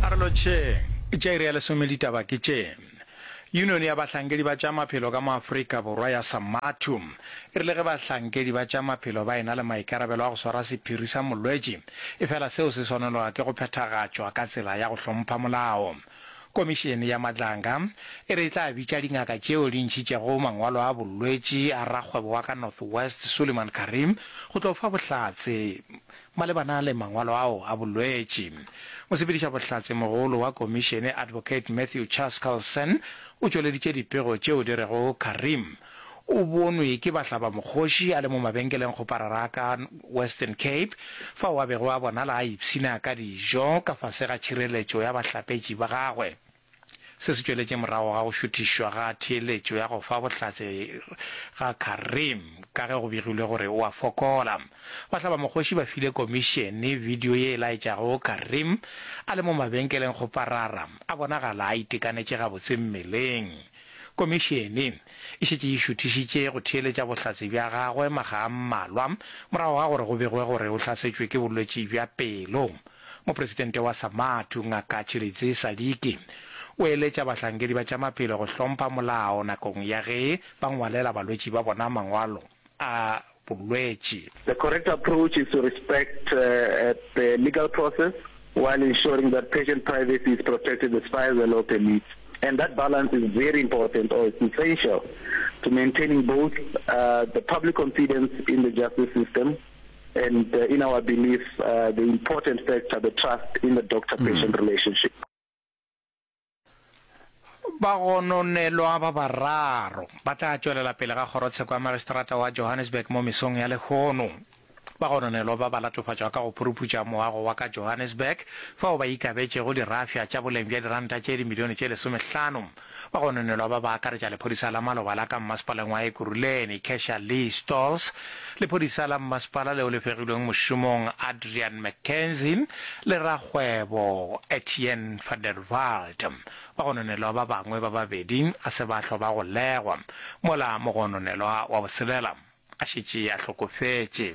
A re lotšheng, tša iri ya lesome ditaba ke tše. Yunione ya bahlankedi ba tša maphelo ka mo Afrika Borwa ya Samathu e rile ge bahlankedi ba tša maphelo ba ena le maikarabelo a go swara sephiri sa molwetši efela seo se swanelwa ke go phethagatšwa ka tsela ya go hlompha molao. Komišene ya Madlanga e re e tla bitša dingaka tšeo di ntšhitšego mangwalo a bolwetši a rakgwebo wa ka North West Suleiman Karim go tlo fa bohlatse Malebana le mangwalo ao a bolwetši, mosepedišabohlatsemogolo wa komišene Advocate Matthew Chaskalson o tšweleditše dipego tšeo di rego Karim o bonwe ke bahlabamokgoši a le mo mabenkeleng go Pararaka, Western Cape, fao a bego a bonala a ipshina ka dijo ka fase ga tšhireletšo ya bahlapetši ba gagwe. Se se tšweletše morago ga go šuthišwa ga theeletšo ya go fa bohlatse ga Karim ka ge go begilwe gore o a fokola. Bahlabamokgoši ba file komišene bidio ye e laetšago Karim a le mo mabenkeleng go parara a bonagala a itekanetše gabotse mmeleng. Komišene e šetše e šuthišitše go theeletša bohlatse bja gagwe makga a mmalwa morago ga gore go begwe gore o hlasetšwe ke bolwetši bja pelo. Mopresidente wa SAMATU, Ngaka Tshilidzi Sadiki, o eletša bahlankedi ba tša maphelo go hlompha molao nakong ya ge ba ngwalela balwetši ba bona mangwalo a bolwetši. The correct approach is to respect the legal process while ensuring that patient privacy is protected as far as the law permits and that balance is very important or it's essential to maintaining both the public confidence in the justice system and in our belief uh, the important factor the trust in the doctor patient mm. relationship bagononelwa ba bararo ba tla tšwelela pele ga kgorotsheko ya magistrata wa johannesburg mo mesong ya lehono bagononelwa ba ba latofatšwa ka go phuruputša moago wa ka johannesburg fao ba ikabetšego dirafša tša boleng bja diranta tše dimilione tše lesomehlano Ba gononelwa ba ba akaretša lephodisa la maloba la ka mmasepaleng wa Ekurhuleni, Kesha Lee Stolz, lephodisa la mmasepala leo le fegilweng mošomong Adrian McKenzie le rakgwebo Etienne van der Walt. Bagononelwa ba bangwe ba babedi ga se ba hlwa ba golegwa mola mogononelwa wa botshelela, A šetše a hlokofetše.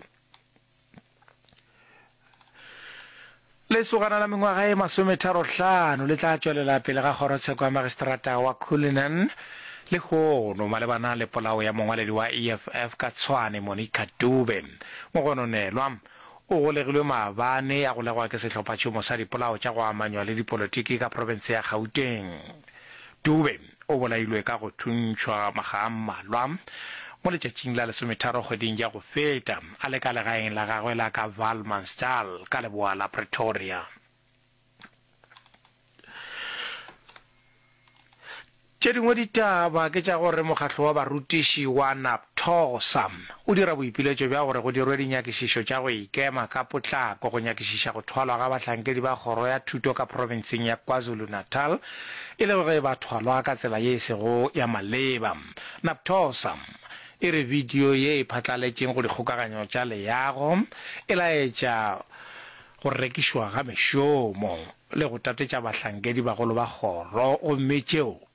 Lesogana la mengwaga e masometharo-hlano le tla tšwelela pele ga kgorotsheko ya magistrata wa Cullinan lehono malebana le polao ya mongwaledi wa EFF ka Tshwane Monica Dube. Mogononelwa o golegilwe maabane a golegwa ke sehlophatšhomo sa dipolao tša go amanywa le dipolotiki ka profense ya Gauteng. Dube O bolailwe ka go thuntšhwa makga a mmalwa mo letšatšing la lesometharo kgweding ya go feta a le ka legaeng la gagwe la ka Valmansdal ka leboa la Pretoria. Tše dingwe ditaba ke tša gore mokgatlo wa barutiši wa Thogo, Sam o dira boipiletšo bja gore go dirwe dinyakišišo tša go ikema ka potlako go nyakišiša go thwalwa ga bahlankedi ba kgoro ya thuto ka profenseng ya KwaZulu-Natal e le ge ba thwalwa ka tsela ye e sego ya maleba. Naptosa e re bidio ye e phatlaletšeng go dikgokaganyo tša leago e laetša go rekišwa ga mešomo le go tatetša bahlankedi bagolo ba kgoro gomme tšeo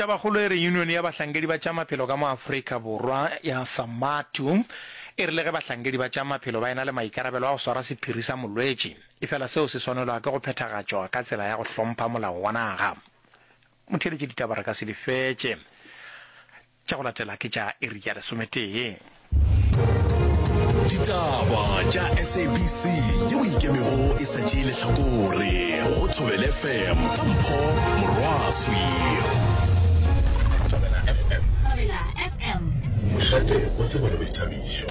Tabakgolo e re Yunione ya Bahlankedi ba tša Maphelo ka mo Afrika Borwa ya SAMATU e rile ge bahlankedi ba tša maphelo ba ena le maikarabelo a go swara sephiri sa molwetši, efela seo se swanelwa ke go phethagatšwa ka tsela ya go hlompha molao wa naga. Motheeletši ditaba re ka se di fetše. Tša go latela ke tša iri ya lesometee. Ditaba tša SABC yeo e ikemego e sa tšee lehlakore go Thobel FM ka Mpho Morwaswi. Thobela FM. Thobela FM. Mošate o tseba le boithabišo.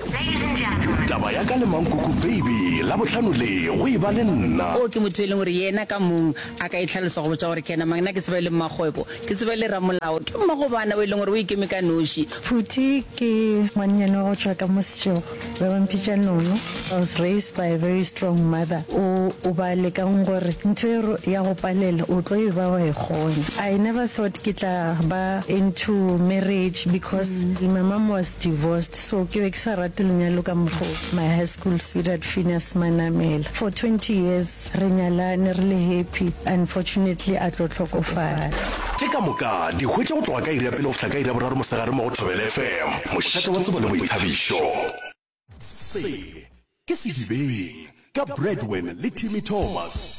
Taba ya ka le Mankoko Baby la bohlano le go e ba le nna. O ke motho e leng gore yena ka mong a ka e tlhalosa go botša gore ke yena mang. Nna ke tseba e le mmakgwebo. Ke tseba e le ramolao. Ke mmagobana o e leng gore o ikeme ka noši. Phuti ke ngwannyane wa go tšwa ka mo Setshogo ba ba mpitša Nono. I was raised by a very strong mother o o ba lekang gore ntho e re ya go palela o tlo e ba wa e kgona. I never thought ke tla ba into marriage because my mum was divorced so ke be ke sa rate lenyalo ka mokgwa o. My high school sweetheart Phineas Manamela for 20 years re nyalane re le happy unfortunately a tlo hlokofala. Tše ka moka di hwetša go tloga ka iri ya pele go fihla ka iri ya boraro mosegare mo go Thobela FM, mošate wa tsebo le boithabišo. Se ke Sedibeng ka Bradwen le Timmy Thomas.